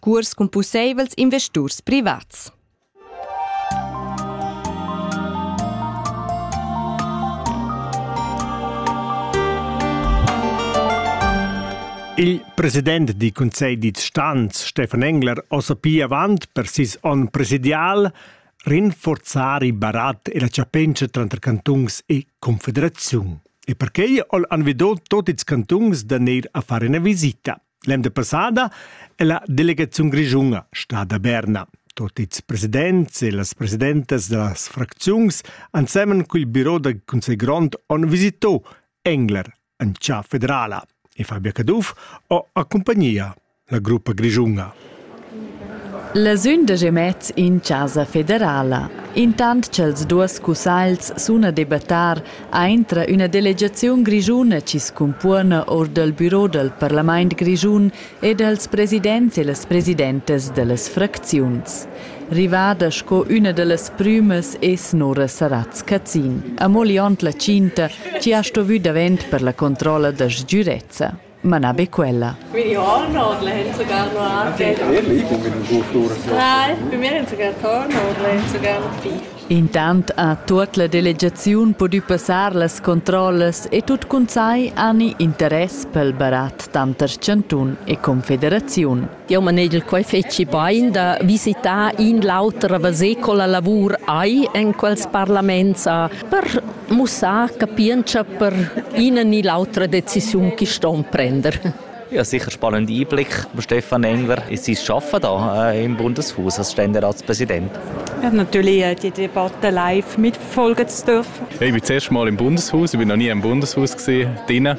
curs cun pusseivels investurs privats. Il president di Conselg di Stanz, Stefan Engler, osa pia avant per sis on presidial rinforzar il barat e la chapentscha tranter cantungs e confederaziun. E perquei ol anvidò tot ils cantungs da neir a fare una visita. L'emda passada è la delegaziun grischuna stada a Berna. Tot ils presidents e las presidentas da las fracziuns ensemen col büro dal Consiglio Grond han visito Engler en città federala e Fabio Caduff ha accompagnato la gruppa grischuna. La sündag e mez in chasa federala. Intant cha'ls duos cussagls sun a debattar, aintra üna delegaziun grischuna chi scumpuona our dal büro dal parlamaint grischun e dals presidents e las presidentas da las fracziuns. Rivada sco üna da las prümas es Nora Saratz-Cazin, amo liond la tschinta chi ha stovü davent per la controlla da sgürezza. ma na be quella. Meine Horno oder haben sogar noch Nein, bei mir haben sogar Torno oder haben sogar noch Vieh. Intant ha tuot la delegaziun pudü passar las controllas e tut cun sai ani interess pel barat tanter chantun e confederaziun. Jau manegel quai fetgi bain da visitar in l'auter a veser co la lavur hai en quels parlaments per mussar capientscha per ina ni l'autra decisiun che ston prender. Ja, sicher spannende Einblicke, Stefan Engler, in sein Arbeiten hier äh, im Bundeshaus als Ständeratspräsident. Ich habe natürlich äh, die Debatte live mitverfolgen zu dürfen. Ich bin das erste Mal im Bundeshaus, ich bin noch nie im Bundeshaus gewesen, drinnen.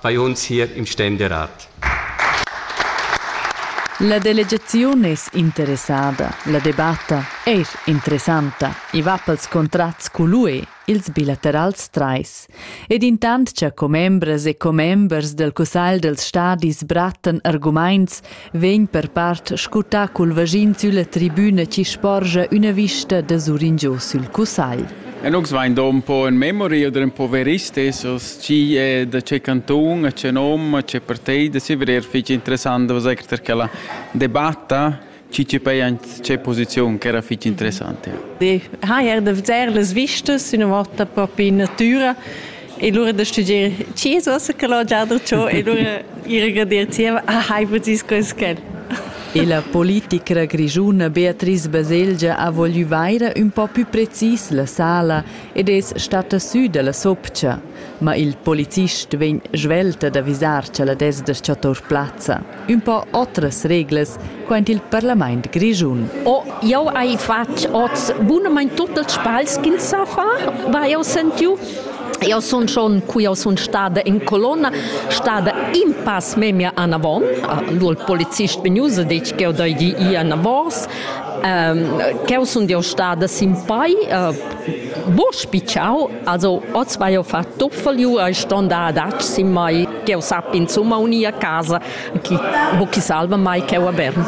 fai ons hier im Ständerat. La delegaziun es interessada, la debatta eir interessanta, i va pels contrats cul ils bilaterals trais. Ed intant cha commembras e commembers del cussagl dels stadis brattan argumaints vegn per part scutà cul vaschin sülla tribüna chi sporgia üna vista da suringio sül cussagl. E nus vain do un po in memoria da un po veristes, chi è da che canton, a che nom, a che partei, da si verer fich interessant da vaser per quella debatta chi ci pei an che posizion che era fich interessante. Die ha er da veser las vistas, una volta propi in natura E lura da studier Jesus che l'ho già detto e lura ir a gradir zieva, ah, hai potis quels quel. E la politicra grischuna Beatrice Baselgia ha voglü vaira ün po pü precis la sala ed es stata sü dalla sopcha. Ma il policist vegn svelta d'avisar cha la desda cha tour plazza. ün po otras reglas quaint il parlamaint grischun. Oh, jau hai fatg oz bunamain tut ils sbagls ch'ins sa far, va jau sentiu. Eu sun schon, cu jau sun stada in colonna, stada in pass memia anavon. Lur polizist vegnius ha detg ch'eu dagi i anavos. Um, ch'eu sun eu stada sin pai, uh, bo spitschau Also oz vai jo far tuffel ju e ston da adatg sin mai ch'eu sap insumma unir a casa chi ho chi salva mai ch'eu a Bern.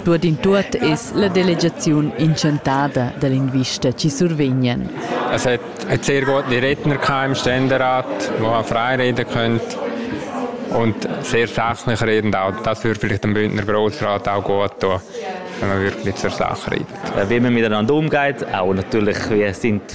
Tuot in tuot es la delegaziun inchantada da linguista chi survegnan. Es hat hat sehr gute Redner gehabt im Ständerat, wo man frei reden könnt und sehr sachlich redend auch. Das würde vielleicht dem Bündner Grossrat auch gut tun, wenn man wirklich zur Sache redet. Wie man miteinander umgeht, auch natürlich, wir sind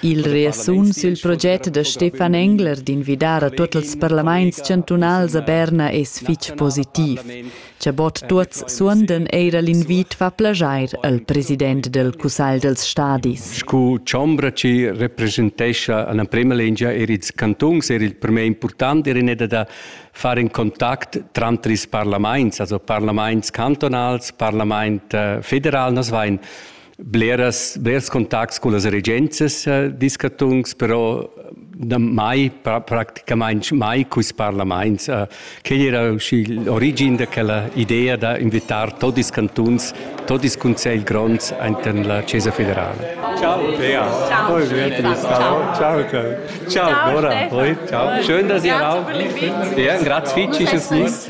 Il reasun sül proget da Stefan Engler d'invidar a tuot ils parlamaints chantunals a Berna es fich positiv. Cha bod tuots suondan eira l'invit fa plaschair al president del Cussagl dels stadis. Scu chombra chi representescha alla prema lingia er ils cantuns er il prmer important er in da far in contact tranter ils parlaments, also parlaments cantonals, parlament äh, federal, nos vain bleras, blers contacts con las regenzas eh, discatungs, però da mai, praticamente mai quis parlaments. Eh, quel era l'origin d'aquella idea da invitar tot ils cantuns, tot ils consells gronds inter la Chiesa Federale. Ciao Bea. Ciao. Poi ciao. Ciao. Ciao Ciao. Bora. Poi, ciao. Schön, dass ihr auch. Ja, grazie fitch ist es nicht.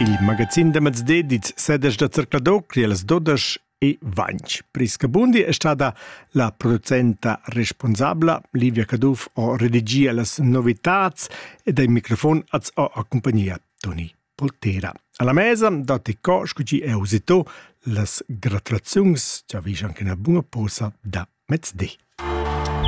Il magazin da mez dedits sedesch da Zercladocria las dodesch e Vanch. Priska Bundi è stata la producenta responsabla, Livia Caduff ho redigia las novitats ed ai microfon az ho a compagnia Toni Poltera. Alla mesa dati co scuci è usito las gratulaziuns, ci avvisano che una buona posa da mezz'dì.